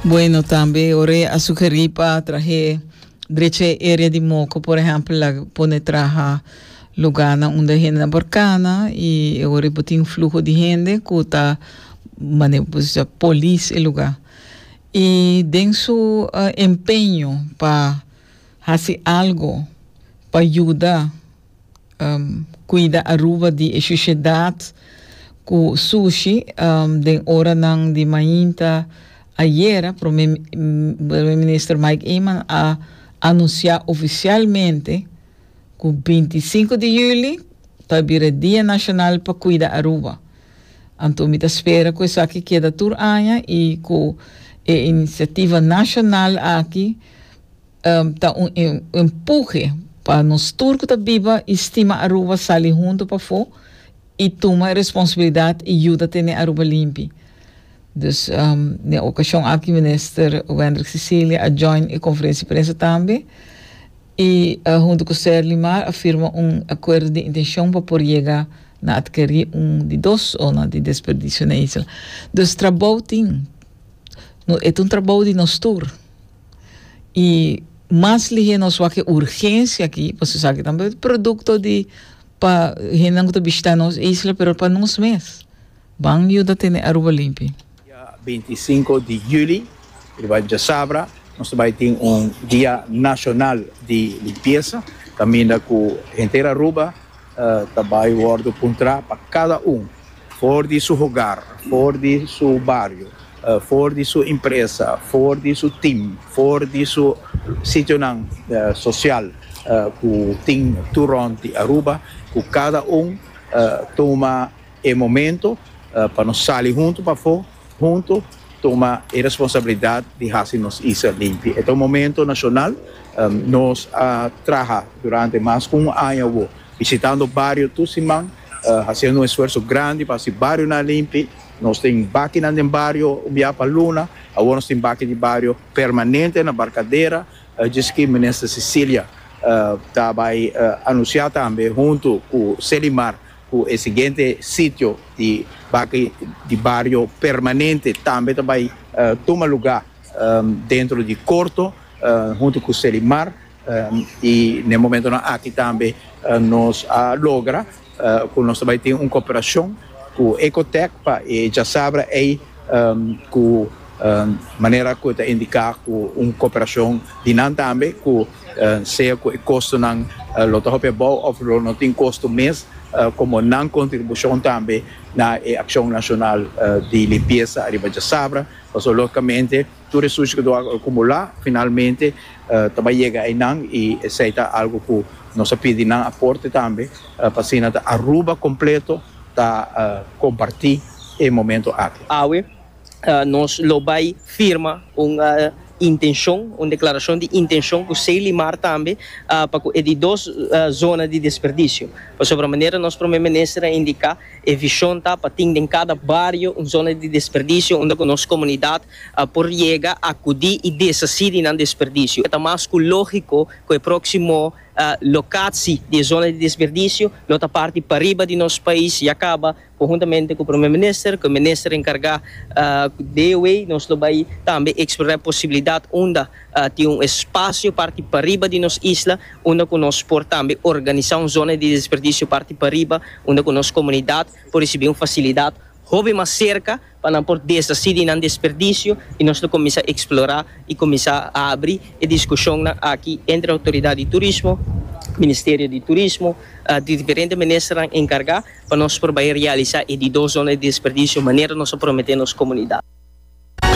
Bueno, tambe ore a sugeri pa trahe dreche area di moco, por ejemplo, la pone traha lugar na unda hende na borcana y ore botin flujo di hende cu ta mane pues ya polis e lugar. Y den su uh, empeño pa hace algo pa ayuda cuida Aruba di e shushedad cu sushi den oranan di mainta. Ayera Prome Prome Minister Mike Eman a anuncia oficialmente cu binti i sinku di juli ta bira e Dia Nacional pa Cuida Aruba. Anto mi ta spera cu esaki keda tur aña y cu e iniciativa nacional aki, ta un empuje pa nos tur cu ta biba y stima Aruba sali hunto pafo y tuma e responsabilidad y yuda tene Aruba limpi. Dus den e ocasion aki Minister Wendrick Cecilia a join e conferentie prensa tambe y hunto cu Ser Limar a firma un acuerdo di intencion pa por yega na adkeri un di dos zona di desperdicio na isla. Dus trabou tin, e ta un trabou di nos tur. y mas lihe nos wak e urgencia aki pasobra esaki tambe producto di pa hendenan cu ta bishita nos isla pero pa nos mes ban yuda tene Aruba limpi. Dia binti i sinku di juli, riba djasabra, nos ta bai tin un dia nashonal di limpiesa, kaminda ku henter Aruba, Ta bai wòrdu puntrá pa kada un, for di su hogar, for di su bario, for di su impresa, for di su tim, for di su sitionan sosial ku tin tur rònt di Aruba, ku kada un tuma e momentu pa nos sali huntu pafó. Huntu tuma e responsabilidat di hasi nos isla limpi. E ta un momento nashonal. Nos a traha durante mas ku un aña awo bishitando bario tur siman, hasiendo un esfuerso grandi pa hasi barionan limpi. Nos tin bakinan den bario un bia pa luna. Awor nos tin baki di bario permanente na Barkadera, djis ki Minister Cecilia ta bai anunsiá tambe huntu ku Selimar. Ku e siguiente sitio di baki di bario permanente tambe ta bai tuma luga dentro di korto huntu ku Selimar i na e momentonan aki tambe nos a logra ku nos ta bai tin un koperashon ku Ecotec pa e djasabra ei ku manera ku e ta indiká ku un koperashon di nan tambe ku sea cu e costonan lo ta hopi abao of lo no tin costo mes, como nan contribucion tambe na e accion nacional di limpieza ariba Djasabra, pasobra logicamente tur e sushi cu lo a acumula finalmente ta bay yega eynan y esey ta algo cu nos a pidi nan aporte tambe pa asina ta Aruba completo ta comparti e momento aki. Awe Nos lo bai firma un intenshon, un deklarashon di intenshon ku Selimar tambe pa ku e di dos zona di desperdisio. Pasobra manera nos Prome Minister a indiká e vishon ta pa tin den kada bario un zona di desperdisio unda ku nos komunidat por yega, akudí i desasí di nan desperdisio. Ta mas ku lógiko ku e próksimo lokatsi di e zona di desperdisio lo ta parti pariba di nos pais, ya kaba Conjuntamente cu Prome Minister, cu e Minister encarga de e wey nos lo bay tambe explora e posibilidad unda tin un espacio parti pariba di nos isla unda cu nos por tambe organisa un zona di desperdicio parti pariba unda cu nos comunidad por ricibi un facilidad hopi mas cerca pa nan por desasí di nan desperdisio i nos lo kuminsá eksplorá i kuminsá abri e diskushonnan aki entre Outoridat di Turismo, Ministerio di Turismo, di diferente ministernan enkargá pa nos por bai realisá e di dos zona di desperdisio manera nos a prometé nos komunidat.